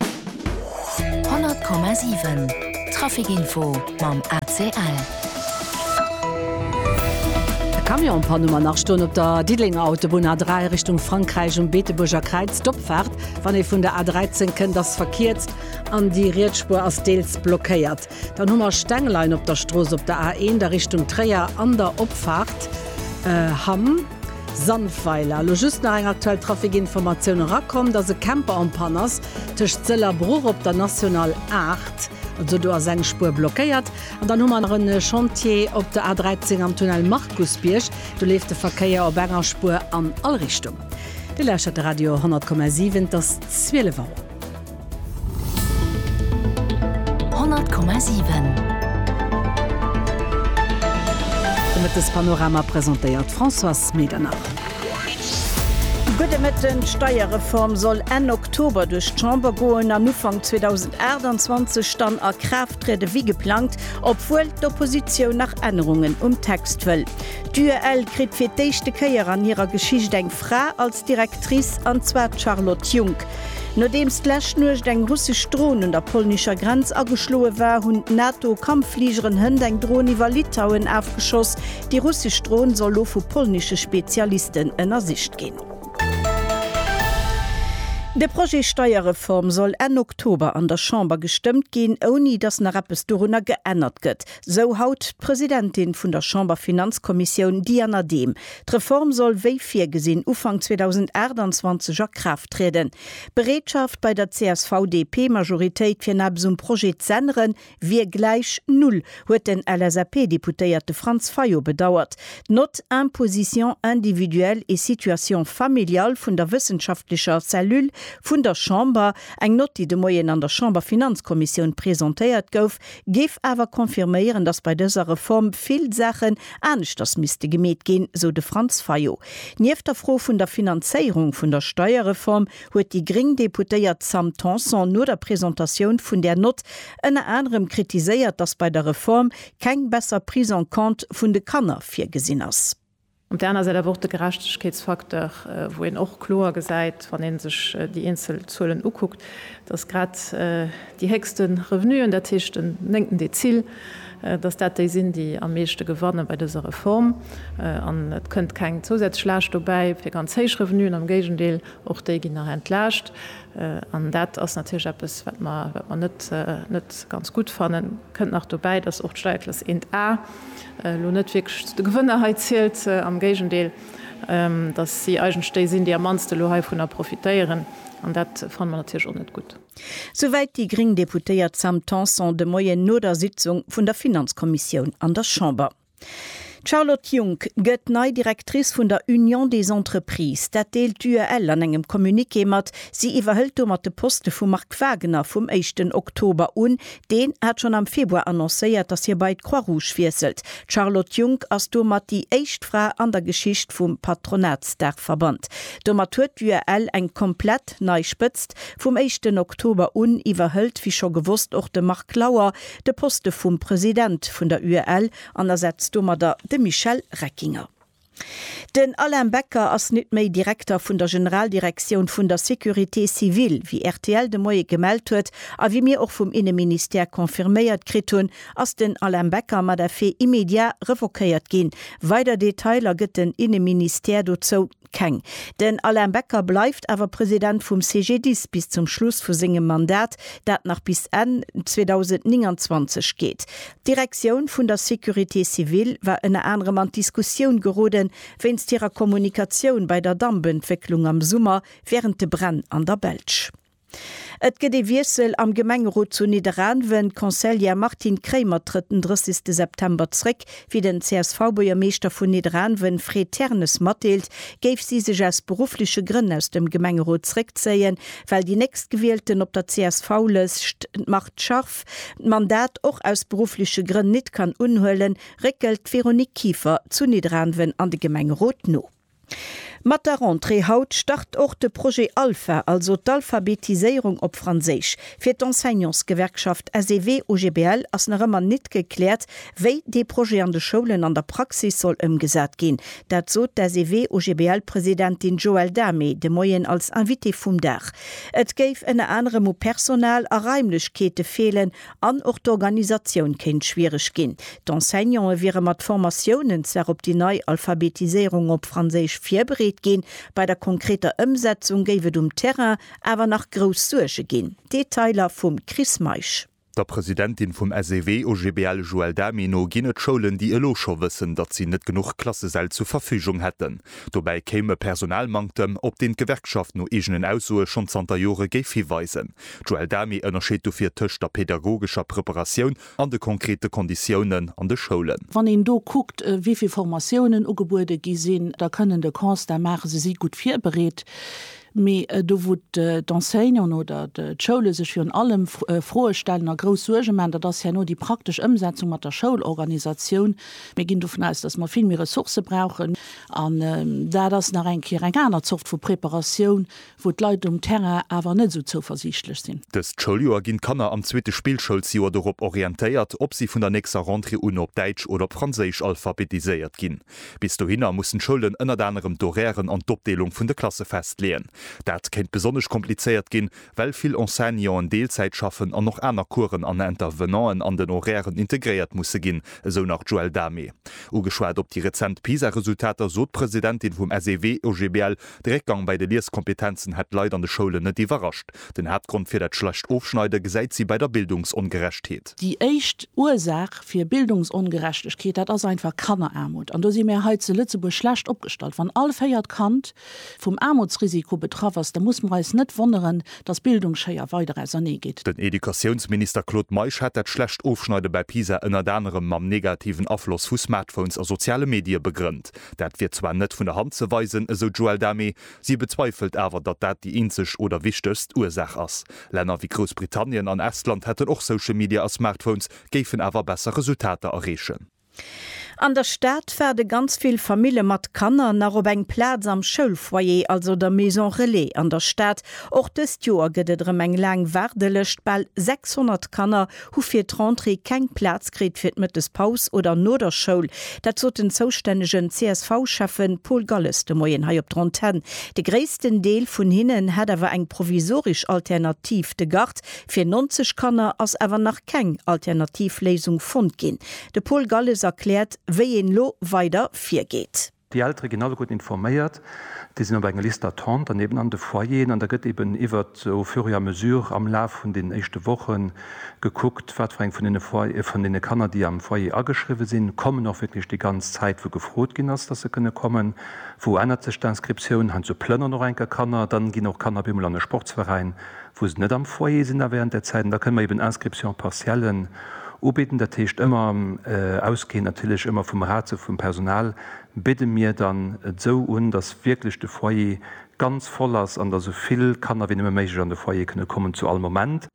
100,7 Trafic Info mam ACL. E Camion an Panne mar nach stoen op der Diddelenger Autobunn A3 Richtung Frankräich um Beetebuerger Kräiz. D'Opfaart, wann ee vun der A13 kënnt, ass verkierzt an déi riets Spuer ass deels blockéiert. Dann hu mer Stengelein op der Strooss op der A1 a Richtung Tréier an der Opfaart Hamm. Sandweiler, elo just nach eng aktuell Trafikinformatioun erakomm, dass e Camper en panne ass tëscht Sëll a Bruch op der National 8, also do ass eng Spuer blockéiert. An dann hu mer nach e Chantier op der A13 am Tunnel Markusbierg, do leeft de Verkéier op enger Spuer an all Richtung. Dir lauschtert de Radio 10,7, et ass 12 Auer. 100,7 De Mëttespanorama presentéiert d'Françoise Medernach. Gudde Mëtten, D'Steierreform soll Enn Oktober duerch d'Chamber goen an Ufank 2028 dann a Kraaft triede wéi geplangt, obwuel d'Oppositioun nach Ännerungen um Text wëll. D'UEL kritt fir d'éischte Kéier an hirer Geschicht eng Fra als Directrice, an zwar d'Charlotte Junck. Nodeems d'lescht Nuecht eng russesch Dron un der polnischer Grenz ageschloe war, hunn d'NATO-Kampffligeren Hënt eng Dron iwwer Litauen afgeschoss. Déi russesch Dron soll lo vu polnesche Spezialisten ënnersicht ginn. De Projet Steierreform soll Enn Oktober an der Chamber gestëmmt ginn, ouni datt nach eppes dorunner geännert gëtt. Sou haut d'Presidentin vun der Chamberfinanzkommissioun Diana Dehm. D'Reform soll wéi virgesinn Ufank 2028 a Kraaft trieden. D'Bereetschaft bei der CSV-DP-Majoritéit fir napes um Projet z'änneren, wier gläich Null, huet den LSAP-Deputéierte Franz Fayot bedauert. D'Nott Imposition individuelle et situation familiale vun der wëssenschaftlecher Cellule vun der Chamber, eng Nott déi de Moien an der Chamberfinanzkommissioun presentéiert gouf, géif awer confirméieren, datt bei dëser Reform vill Saachen aneschters misste gemeet ginn, sou de Franz Fayot. Nieft der Fro vun der Finanzéierung vun der Steierreform huet déi gréng Deputéiert Sam Tanson no der Presentatioun vun där Nott ënner anerem kritiséiert, datt bei der Reform keng besser Prise en compte vun de Kanner virgesinn ass. Op där aner Säit awer och de Gerechtegkeetsfaktor, wou een och kloer gesäit, wann ee sech déi eenzel Zuelen ukuckt, dass grad déi héchste Revenuen, dat heescht den néngten Dezil, dass dat déi sinn, déi am meeschte gewanne bei dëser Reform. An et kënnt keng zousätzlech Laascht dobäi fir ganz héich Revenuen, am Géigendeel, och déi ginn nach entlaascht. An dat ass natierlech eppes, wat mer net ganz gutt fannen. Et kënnt nach dobäi, dass och d'Steierklass 1 A, elo net wierklech zu de Gewënner hei zielt, am Géigendeel, dass si eigentlech déi sinn, déi am mannsten elo heivunner profitéieren, an dat fanne mer natierlech och net gutt. Souwäit déi gréng Deputéiert Sam Tanson de Moien no der Sitzung vun der Finanzkommissioun an der Chamber. D'Charlotte Junck gëtt nei Directrice vun der Union des Entreprises. Dat deelt d'UEL an engem Communiqué mat. Si iwwerhëlt domat de Poste vum Marc Wagener vum éischten Oktober un, Deen hat schonn am Februar annoncéiert, datt hie bei d'Croix-Rouge wiesselt. D'Charlotte Junck ass domat déi éischt Fra an der Geschicht vum Patronatsdaachverband. Domat huet d'UAL eng komplett nei Spëtzt. Vum éischten Oktober un iwwerhëlt, wéi scho gewosst, och de Marc Lauer de Poste vum President vun der UAL an ersetzt domadder de Michel Reckinger. Den Alain Becker ass nit méi Direkter vun der Generaldirektioun vun der Sécurité civile. Wéi rtl de Moie gemellt huet a wéi mir och vum Inneministère confirméiert kritt hunn, ass den Alain Becker mat effet immédiat revoquéiert ginn. Weider Detailer gëtt den Inneministère dozou keng. Den Alain Becker bleift awer President vum CGDIS bis zum Schluss vu sengem Mandat, dat nach bis Enn 2029 geet. D'Direktioun vun der Sécurité civile war ënner anerem an d'Diskussioun gerode wéinst hirer Kommunikatioun bei der Dampentwécklung am Summer wärend de Bränn an der Belsch. Et gëtt ee Wiessel am Gemengerot zu Nidderaanwen, D'Conseillère Martine Kremer trëtt den 30 de September zréck. Wéi den CSV-Buergermeeschter vun Nidderaanwen, Fred Ternes, matdeelt, géif si sech aus beruffleche Grënn aus dem Gemengerot zréckzéien, well déi Nächstgewielten op der CSV-Lëscht, d'Mart Scharff, Chef d'Mandat och aus beruffleche Grënn nit kann unhuelen, réckelt d'Véronique Kieffer zu Nidderaanwen an de Gemengerot no. Mat der Rentrée haut start och de Projet Alpha, also d'Alphabetiséierung op Franséisch. Fir d'Enseignantsgewerkschaft SEW-OGBL ass nach ëmmer nit gekläert, Wéi dee Projet an de Schoulen an der Praxis soll ëmgesat ginn, dat sot d'SEW-OGBL-Presidentin Joëlle Dame de Moien als Invitée vum Dag. Et géif ënner anerem u Personal a Raimlechkeete feelen an och d'Organisatioun kéint schwiereg ginn. D'Enseignante wiere mat Formatiounen zwar op déi nei Alphabetiséierung op Franséisch virbereet ginn, bei der konkreter Ëmsetzung géif et um Terrain awer nach grouss Suerge ginn. Detailer vum Chris Meisch. Der Presidentin vum SEW OGBL Joëlle Damy no ginn et Schoulen, déi elo scho wëssen, datt si net genuch Klassesäll zur Verfügung hätten. Dobäi kéim e Personalmanktem, op deen d'Gewerkschaft no eegenen Aussoe schonn zanter Jore géif hiweisen. D'Joëlle Damy ënnerscheet dofir tëscht der pedagogescher Preparatioun an de konkrete Konditiounen an de Schoulen. Wann een do kuckt, wéi vill Formatiounen ugebuede gi sinn, da kënnen de Constat maachen, se si gutt virbereet. Mee do wou d'Enseignanten oder d'Schoule sech virun allem Froe stellen a grouss Suerge maachen, dat ass herno déi praktesch Ëmsetzung mat der Schoulorganisatioun. Mir ginn dovun aus, datt mer vill méi Ressourcë brauchen. An dat ass nach eng Kéier eng aner Zort vu Preparatioun, wou d'Leit um Terrain awer net esou zouversiichtlech sinn. Dëst Schouljoer ginn d'Kanner am zweete Spillschoulsjoer dorop orientéiert, ob si vun der nächster Rentrée u no op Däitsch oder op Franséisch alphabetiséiert ginn. Bis dohinner mussen d'Schoulen ënnert anerem d'Horairen an d'Opdeelung vun de Klasse festleeën. Dat kéint besonnesch komplizéiert ginn, well vill Enseignanten Deelzäit schaffen an och aner Coursen an Intervenanten an den Horairen integréiert musse ginn, esou nach d'Joëlle Damé. Ugeschwat op déi rezent PISA-Resultater sot d'Presidentin vum SEW-OGBL, de Réckgang bei de Lieskompetenzen hätt d'Leit an de Schoulen net iwwerrascht. Den Haaptgrond fir dat schlecht Ofschneide gesäit si bei der Bildungsongerechtheet. Déi éischt Ursaach fir Bildungsongerechtegkeet, dat ass einfach Kanneraarmut. An do si mir hei zu Lëtzebuerg schlecht opgestallt. Wann all véiert Kand vum Aarmutsrisiko betraff ass, da musse mer eis net wonneren, datt Bildungsschéier weider ausernee geet. Den Educatiounsminister Claude Meisch hat dat schlecht Ofschneide bei PISA ënnert anerem mam negativen Afloss vu Smartphones a soziale Medie begrënnt. Dat wier zwar net vun der Hand ze weisen, esou d'Joëlle Damé, Si bezweifelt awer, datt dat déi eenzeg oder wichtegst Ursaach ass. Länner wéi Groussbritannien an Estland hätten och Social Media a Smartphones, géifen awer besser Resultater erreechen. An der Stad waarde ganz vill Famille mat Kanner nach op eng Plaz am Schoulfoyer, also der Maison Relais an der Stad. Och dëst Joer gëtt et erëm eng laang Waardelëscht, bal 600 Kanner hu fir d'Rentrée keng Plaz kritt fir d'Mëttespaus oder no der Schoul. Dat sot den zoustännegen CSV-Schäffe Paul Galles de Moien hei op der Antenn. De gréissten Deel vun hinnen hätt awer eng provisorisch Alternativ. De Gard fir 90 Kanner ass awer nach keng alternativ Léisung fonnt ginn. De Paul Galles erkläert, wéi een elo weider virgeet. Déi Eltere ginn alleguerten informéiert, déi sinn op enger Liste d'attente an eben an de Foyeren an da gëtt eben iwwert au fur et à mesure am Laf vun deenen éischte Woche gekuckt, wat fir eng vun deene Foy-, vun deene Kanner, déi am Foyer ageschriwwe sinn, kommen och wierklech déi ganz Zäit, wou gefrot ginn ass, dass se kënne kommen. Wou ännert sech d'Inscriptioun? Heiansdo plënneren och eng Kéier Kanner, dann ginn och Kanner op eemol an e Sportsveräin, wou se net am Foyer sinn a während där Zäit, an da kënne mer eben Inscriptions partiellen ubidden. Dat heescht ëmmer ausgehend natierlech ëmmer vum Ratio vum Personal bidde mir dann esou un, dass wierklech de Foyer ganz voll ass an dass esou vill Kanner wéi nëmme méiglech an de Foyer kënne kommen zu all Moment.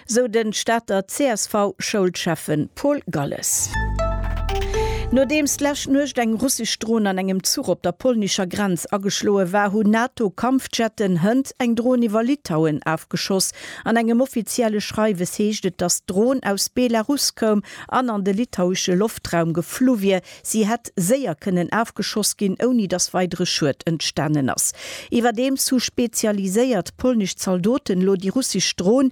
Sou den Stater CSV-Schoulschäffen. Paul Galles. Nodeems d'lescht Nuecht eng russesch Dron an engem Zuch op der polnescher Grenz ageschloe war, hunn NATO-Kampfjetten hënt eng Dron iwwer Litauen afgeschoss. An engem offizielle Schreiwes heescht et, datt d'Dron aus Belarus koum an an de litauesche Loftraum geflu wier. Si hätt séier kënnen afgeschoss ginn, ouni datt weidere Schued entstanen ass. Iwwerdeems hu spezialiséiert polnesch Zaldoten elo déi russesch Dron,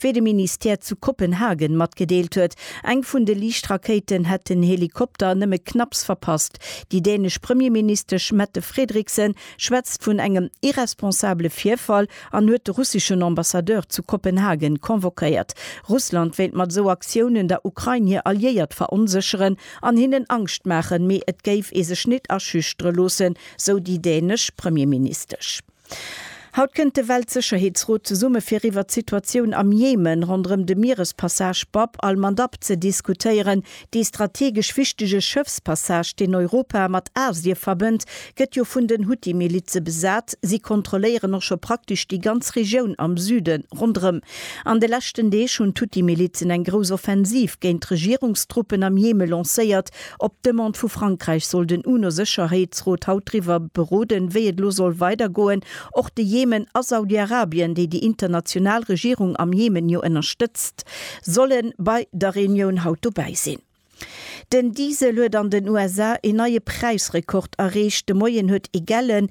Wéi de Ministère zu Kopenhagen matgedeelt huet, eng vun de Liichtrakéiten hätt den Helikopter nëmme knapps verpasst. Déi dänesch Premierministesch Mette Frederiksen schwätzt vun engem irresponsabele Virfall an huet de russeschen Ambassadeur zu Kopenhagen convoquéiert. Russland wéilt mat esou Aktiounen der Ukrain hir Alliéiert veronsécheren an hinnen Angscht maachen, mee et géif ee sech nit aschüchtere loossen, sou déi dänesch Premierministesch. Haut kënnt de Weltsëcherheetsrot zesumme fir iwwert d'Situatioun am Jemen ronderëm de Mierespassage Bab al-Mandab ze diskutéieren. Dee strategesch wichtege Schëffspassage, deen Europa mat Asie verbënnt, gëtt jo vun den Huthi-Milize besat. Si kontrolléieren och scho praktesch déi ganz Regioun am Süde ronderëm. An de leschten Deeg hunn d'Huthi-Milizen eng grouss Offensiv géint d'Regierungstruppen am Jeme lancéiert, Op Demande vu Frankräich soll den UNO-Sécherheetsrot haut driwwer beroden, wéi et elo soll weider goen. Och de Jemen a Saudi-Arabien, déi déi international Regierung am Jemen jo ënnerstëtzt, solle bei der Reunioun haut dobäi sinn. Den Diesel huet an den USA een neie Präisrekord erreecht. De Moien huet ee gellen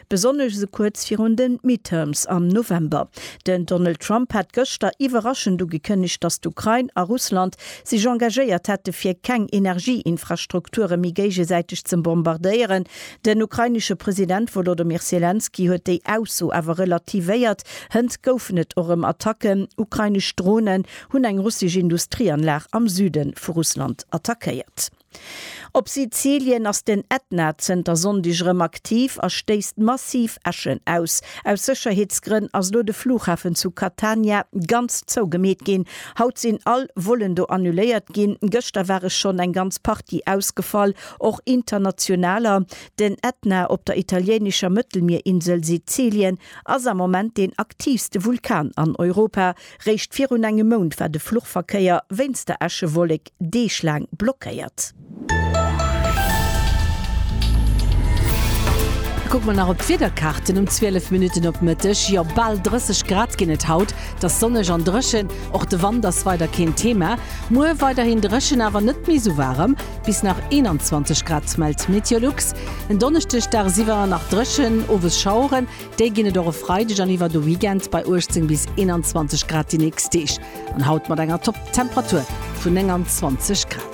Besonnesch esou kuerz virun de Midterms am November. Den Donald Trump hat gëschter iwwerraschend ugekënnegt, datt d'Ukrain a Russland sech engagéiert hätte fir keng Energieinfrastrukture méi géigesäiteg ze bombardéieren. Den ukrainesche President Wolodymyr Selenskyj huet déi Ausso awer relativéiert. Hënt goufen et och rëm Attacken. Ukrainesch Dronen hunn eng russesch Industrieanlag am Süde vu Russland attackéiert. Op Sizilien ass den Ätna zënter Sonndeg erëm aktiv a stéisst massiv Äschen aus. Aus Sécherheetsgrënn ass elo de Flughafen zu Catania ganz zougemeet ginn. Haut sinn all Vollen do annuléiert ginn. Gëschter ware schonn eng ganz Partie ausgefall, och internationaler. Den Ätna op der italieenescher Mëttelmierinsel Sizilien ass am Moment deen aktiivste Vulkan an Europa. Réischt virun engem Mount war de Fluchverkéier wéinst der Äschewollek deeglaang blockéiert. Kucke mer nach op d'Wiederkaarten um 12 Minutten op Mëtteg. Jo, bal 30 Grad ginn et haut. Et ass sonneg an dréchen. Och de Wand ass weider keen Thema. Muer weiderhin dréchen, awer net méi esou waarem, bis nach 21 Grad, mellt Meteolux. En Donneschdeg daagsiwwer nach dréchen, owes Schaueren. Déi ginn et och e Freideg an iwwer de Weekend bei 18 bis 21 Grad déi nächst Deeg an haut mat enger Topptemperatur vun 29 Grad.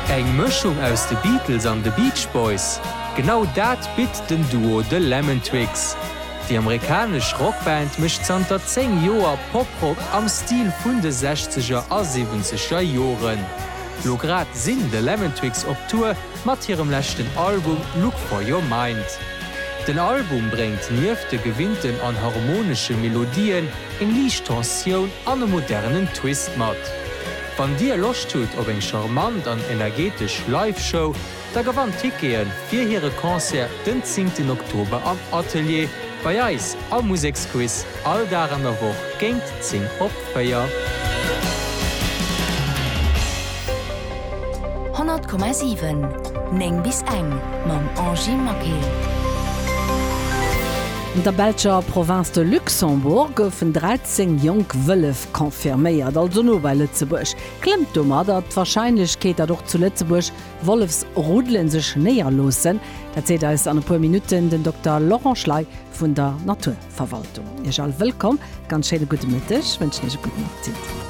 Eng Mëschung aus de Beatles an de Beach Boys? Genau dat bitt den Duo The Lemon Twigs. Déi amerikanesch Rockband mécht zanter 10 Joer Poprock am Stil vun de Sechzeger a Siwwenzeger Joren. Lo grad sinn The Lemon Twigs op Tour mat hirem leschten Album Look For Your Mind. Den Album bréngt nieft de gewinnten an harmonesche Melodien eng liicht Tensioun an e modernen Twist mat. Wann dir Loscht hutt op eng charmant an energetesch Live-Show, Da gewannt Tickete fir hire Concert den 10 ten Oktober am Atelier bei eis am Museksquiz, all Dag an der Woch géint 10 op 4. Honnert Komma siwen, néng bis eng, mam Angie Maquet. An der belscher Provënz de Luxembourg goufen 13 jonk Wëllef confirméiert, also no bei Lëtzebuerg. Klëmmt domadder d'Warscheinlechkeet, datt och zu Lëtzebuerg Wollefsruddelen sech néierloossen. Dat seet eis an e puer Minutten den Dokter Laurent Schley vun der Naturverwaltung. Iech all wëllkomm, ganz schéine gudde Mëtteg wënschen Iech e gudden Appetit.